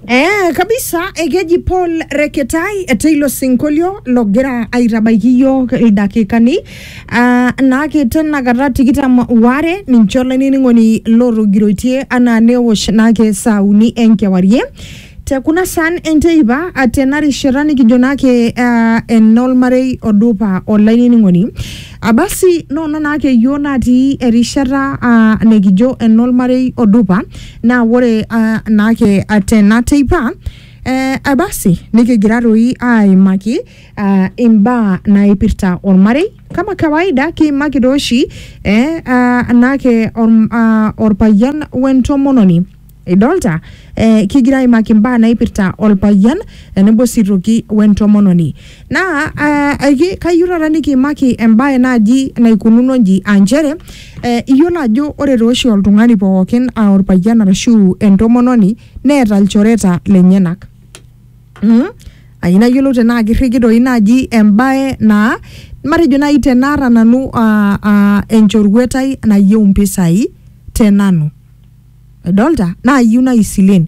Eh, kabisa ekeji Paul Reketai teilo sinkolio logira aitabaiki iyiook ildakikani ah, naake tenakata tikitam waare ninche olainining'oni lootogiroitie anaa neosh naake saa uni enkewarie te kuna saan enteipa ah, tena rishata nikijo naake ah, enolmarei odupa olainining'oni Abasi noona naake iyiook natii erishata aa nikijo enolmarei odupa naa ore aa, naake tena teipa ee abasi nikigira toi aaimaki aa imbaa naipirta olmarei. Kama kawaida kiimaki tooshi ee aa naake aa olpayian o entomononi. Idolta, eh, kigira aimaki imbaa naipirta olpayian tenebo sii toki wentomononi. Naa eh, aiki- kayieu taata nikiimaki embae naaji naikununo nji aa nchere eh, iyiolo ajo ore taa oshi oltung'ani pookin aa olpayian arashu entomononi neeta ilchoreta lenyenak. Mm. Ayieu nayiolou tenaa kirriki doi naaji embae naa matejo naaji tenaata nanu ah, ah, enchoruetai nayieu impisai te nanu. edolta naayieu naai isilen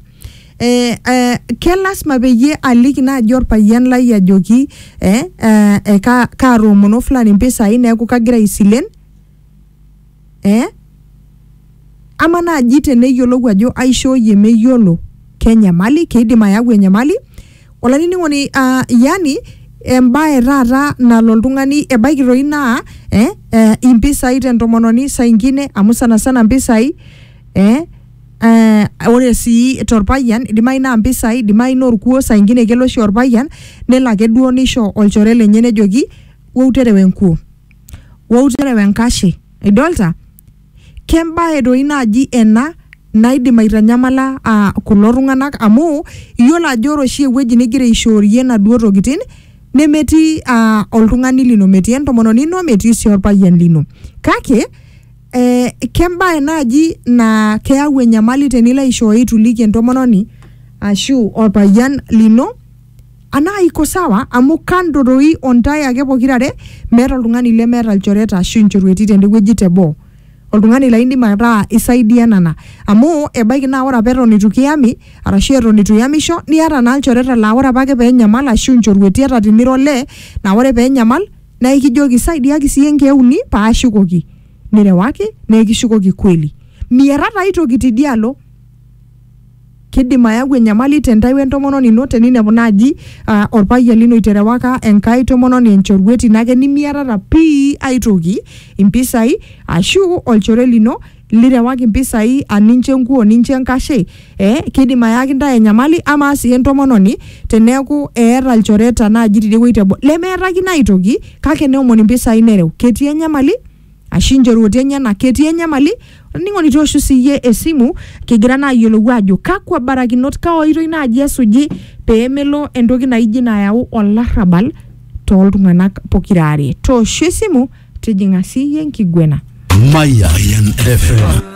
eh, eh, kelasima peyie aliki naaji orpayian lai ajoki eh, eh, eh, ka, kaatoomono fulani mpisai neeku kagira aisilen eh, ama naaji teneyiolou ajo aishooyie meyiolo kenyamali keidim ayau enyamali olainining'oni uh, yani embae taata nalo oltung'ani ebaiki toi naa eh, eh, impisai tentomononi saa ingine amu sana sana mpisai eh, eh, ore sii torpayian idimayu naa mpisai idimayu naa orkuo saa ingine kelo oshi orpayian nelo ake duo nisho olchore lenye nejoki wou terewa enkuo wou terewa enkashe idolta Kembae doi naaji ena naidim aitanyamala aa kulo tung'anak amu iyiolo ajo ore oshi ewueji nigira aishoorie inaduo tokitin nemetii aa oltung'ani lino, metii entomononi ino, metii sii orpayian lino. Kake ee kembae naaji naa keyau enyamali tenilo aishooyo itu iliki entomononi ashu orpayian lino. Anaa iko sawa amu kando doi o ntae ake pokira are, meeta oltung'ani lemeeta ilchoreta ashu inchorueti tende wueji te boo. Oltung'ani laa indim ataa isaidianana. Amu ebaiki naa ore apa eton eitu kiyami arashu eton eitu iyamisho niata naa ilchoreta laa ore apake pee enyamal ashu inchorueti ata tinira olee naa ore pee enyamal naa ikijoki saidiaki sii iyie nkeek uni paashukoki. Nirewaki naa ekishukoki kweli. Miata taa ai toki tidia alo. Keidim ayau enyamali te ntae we ntomononi ino teninepu naaji aa olpayian lino iterewaka enkae tomononi enchoruet ino ake nimiatata pii ae toki, impisai aashu olchore lino lirewaki impisai aa nincho enkuo nincho enkashe ee keidim ayaki intae enyamali. Amaa sii entomononi teneeku eeta ilchoreta naaji tidie wueji teboo lemeetakino ae toki kake neomon impisai nereu ketii enyamali? ashu inchorueti enyenak ketii enyamali olainining'oni tooshu siyie esimu kigira naa ayiolou ajo kakwa barakinot kaa oitoi naaji esuji peemelo entoki naijo ina ayau olarrabal toltung'anak pokira are tooshu esimu tijing'a siyie enkiguena Mayan FM.